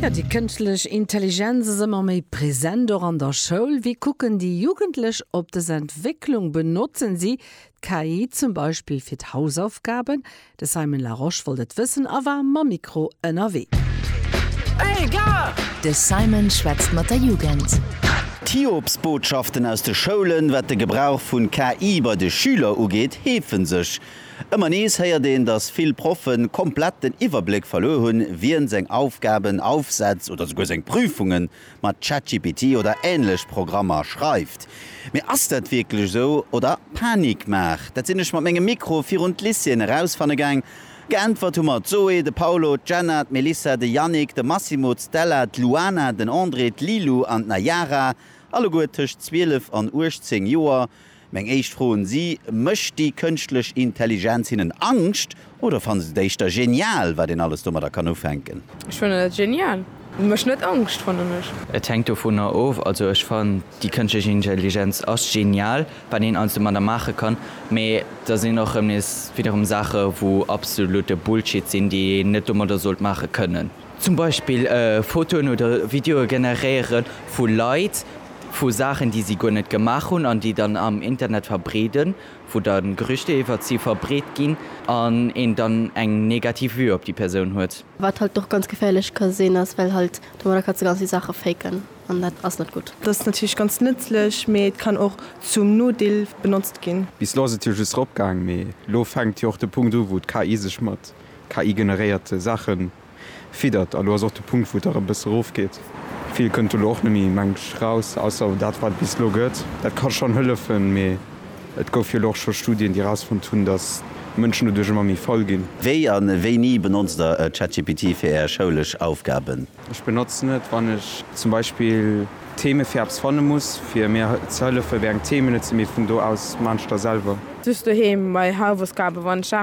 Jo, déi kënschtlech Intelligenz ass ëmmer méi present, och an der Schoul. Wéi kucken déi Jugendlech op dës Entwécklung? Benotzen si d'KI zum Beispill fir d'Hausaufgaben? De Simon Larosche wollt et wëssen a war mam Mikro ënnerwee. De Simon schwätzt mat der Jugend. D'Hiobsbotschaften aus de Schoulen, wat de Gebrauch vun KI bei de Schüler ugeet, heefe sech. Ëmmer nees héiert een, dass vill Proffe komplett den Iwwerbléck verluer hunn, wien seng Aufgaben, Aufsätz oder souguer seng Prüfunge mat ChatGPT oder änlech Programmer schreift. Mee ass dat wierklech esou oder Panikmaach? Dat sinn ech mat mengem Mikro virun d'Lycéeën erausfanne gaang. Geäntwert hu mer d'Zoé, de Paulo, d'Jenna, d'Melissa, de Yannick, de Massimo, d'Stella, d'Luana, den André, d'Lilou an d'Nayara, alleguer tëscht 12 an 18 Joer. Meng éischt Fro un si, Mécht déi kënschtlech Intelligenz hinnen Angscht oder fanne se et éischter genial, wat een alles domadder kann ufänken? Ech fannen et genial. Mécht net Angscht, fannen ech. Et hänkt dovunner of. Also ech fannen déi kënschtlech Intelligenz ass genial, wat een alles domadder maache kann. Mee da sinn och erëm nees widderem Saache wou absolute Bullshit sinn, déi een net domadder sollt maache kënnen. Zum Beispill Fotoen oder Videoe generéiere vu Leit, vu Saachen, déi si guer net gemaach hunn an déi dann am Internet verbreeden, wou dann Gerüchter iwwert si verbreet ginn an een dann eng negativ Vue op déi Persoun huet. Wat halt och ganz geféierlech ka sinn ass, well halt domadder kanns de ganz vill Saache faken an dat ass net gutt. Dass natierlech ganz nëtzlech, mee et kann och zum Nodeel benotzt ginn. Bis lo ass et jo just ropgaang, mee lo fänkt jo och de Punkt u wou d'KI sech mat. KI-generéiert Saache fiddert. A lo ass och de Punkt, wou et dach e bësse rofgeet. Vill kënnt do lo och net méi, mengt ech, raus, ausser dat, wat et bis elo gëtt. Dat ka schonn hëllefen, mee et gouf jo elo och scho Studien, déi erausfonnt hunn, datt d'Mënschen doduerch ëmmer méi faul ginn. Wéi a wéini benotzt der ChatGPT fir Är schoulesch Aufgaben? Ech benotzen et, wann ech zum Beispill Theme fir eppes fanne muss, fir mir ze hëllefen, wéi eng Themen et sinn, mee vun do aus maachen ech da selwer. Just doheem bei Hausaufgaben, wann ech Saachen.